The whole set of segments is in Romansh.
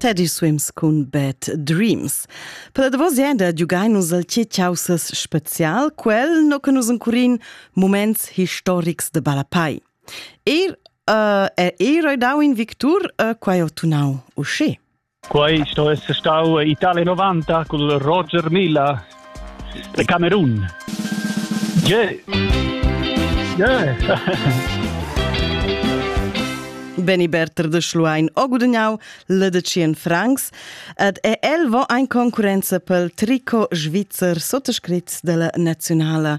Teddy swims cun Bad Dreams. Per la davos enda giugainus al tge chaussas spezial, quel no che nus encurin moments historics de Balapai. Er uh, è era dau in victur uh, quai ho tunau usce. Quai sto esser stau Italia 90 col Roger Milla De Camerun. Yeah. Yeah. Benny Berter de Schluein o gudagnau le de 100 francs ed è el vo ein concurenza pel tricot svizzer sottoscritts della nazionala.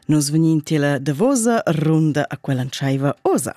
Nus vegnin tila davosa runda a quella ntschaiva osa.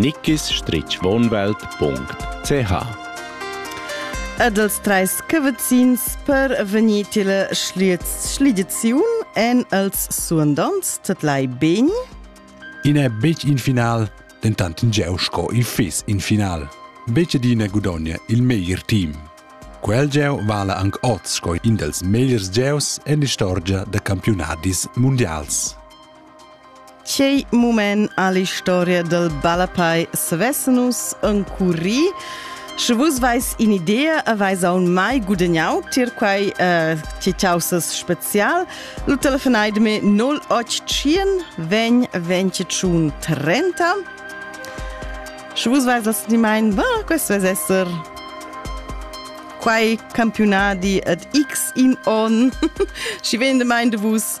nickisstrichwohnwelt.ch Ed els treis cavazzins per vegnir tile schliets schlidiziun en els suandants tat lai beni? In è betg in final, dentant in geu sco il fiss in final. Betg d'ina gudogna il meglier team. Quel geu vala anc oz sco in dels megliers geus en l'istorgia da campiunadis mundials. Ch'ei mument all'historia del Ballapei savesse nus encurri Sche vus veis in'idea e veis aun mai gudagnau tier quei uh, titaussas spezial, lu telefonaid me 081 vegn 21 30. Sche vus veis as di mein, bah, questo es esser quei campionadi et x in on. Schi vende mein de vus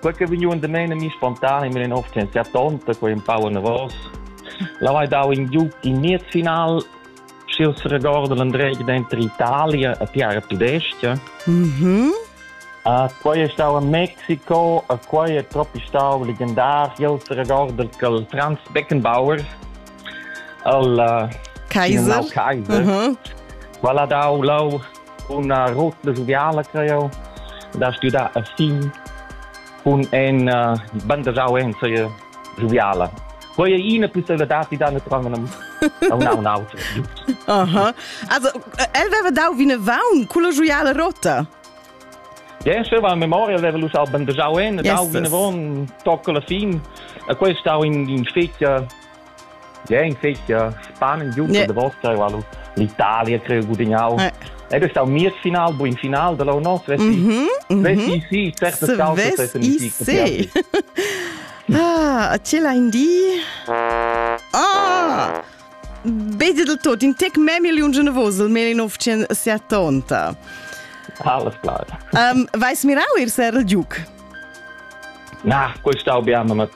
quei che vegniu undamein a mi spontan in mia nova fianzia tonta, quei empau anavos. Lau hai dau in giug in miez final, sch'il se regorda l'andreg denter Italia e Piara Tudestia. Mhm. Uh, quei è stau a Mexiko, a quei è troppi stau legendar, il se regorda il Franz Beckenbauer, il uh, Kaiser. Kaiser. Uh -huh. Qual ha dau lau Una rota joviala, creo, da studer a fin cun en uh, bandajau ensaie joviala. Quei è ina possibilità di da naturalment a un un auto. Aha. Also el aveva dau vine vaun con la joviala rota. Ja, se va a memoria aveva lu sau bandajau en, dau vine von tocca la fin. E questo stau in in spezia Jeu in festa spannend giu da Vosca val l'Italia creu gudignau. Ed è stau mies final, buin final da lo nos, vesti. Vesti sì, certo causa se Ah, ce la indi? Ah! Beze del tot, in tec me miliun generosel, me in 970. Alles klar. Um, vais mirau ir ser il giuc? Na, quel stau biamo, ma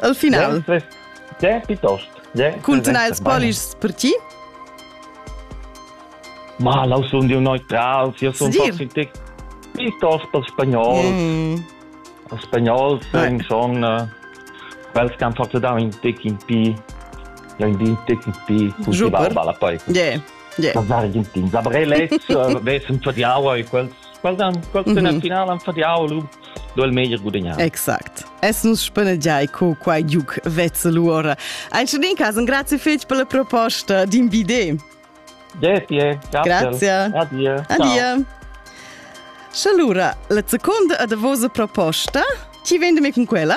Al final. Sempre. Te piuttosto. Cuntinuai ils polischs per ti? Ma lau sun dio neutrals, io sun toxic piuttosto per spagnol. Mm. Il spagnol sun son quels che hanno fatto da un tic in pi, ja in din tic in pi, con si barba poi. Yeah. Yeah. Das Argentin. Aber ich letzt, äh, weiß, für die Aua, quels, quels dann, quels sind mhm. im Finale für die Aua, do il meglio guadagnare. Exact. Es nus spannegiai co quai giuc vezzel ora. Anche in cas, grazie fetg per la proposta d'invide. Grazie. Grazie. Addio. Addio. Allora, la seconda a da vosa proposta, chi vende me con quella?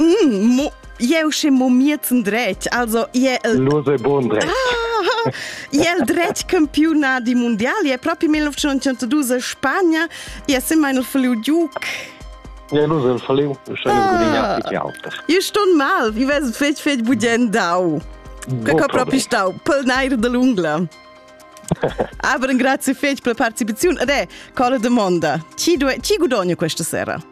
Mm, mo, jeu sche mo mietzen dretg, also je el Lose bon dretg. Ah, je el dretg campiona di mondial, je proprio 1902 Spagna, je sem mein verliu Duke. Ja, nu sem verliu, schon ah, gudignat die Autos. Io ston mal, vi ves fetg fetg budien dau. Kako proprio stau, pol nair de l'ungla. Aber grazie fetch per la partecipazione ed è, quale domanda, chi, do, chi guadogna questa sera?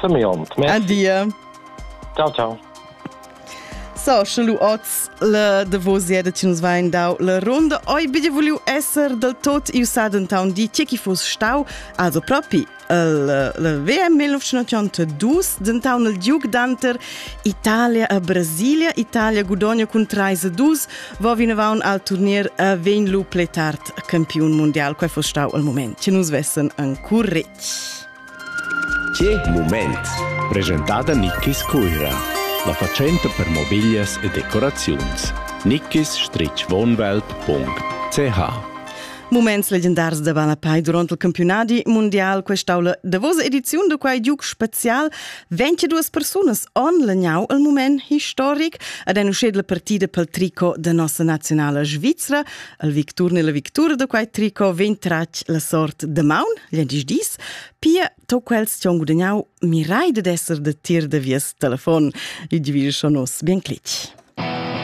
Simeon. An dir. Ciao, ciao. So, sche lu oz le davos jede ci nus vain dau la ronda, oi bide vuliu esser del tot iu saden town di tje chi fus stau, also propi il le VM 1982 den town il Duke Danter Italia a Brasilia Italia gudonia cun 3-2 va vinavon al turnier a ven lu pletart campiun mondial, quai fus stau il moment. Ci nus vessen ancora retg. Che mument! Presentada Nickis Cuira, la fatschenta per mobiglias e decoraziuns. nickis-wohnwelt.ch Muments legendars da Banapai durant il campionadi mundial quest'aula davosa ediziun da quai giuc spezial 22 persunas han legnau il mument historic ad una scedla partida pel tricot da nossa nazionala svizra Al victur ne la victura da quai tricot vegn tratg la sort de maun, gl'endisch dis, pia to quels ci han gudagnau mirai ded esser de tir de vies telefon, il divisa schon nos bien clic.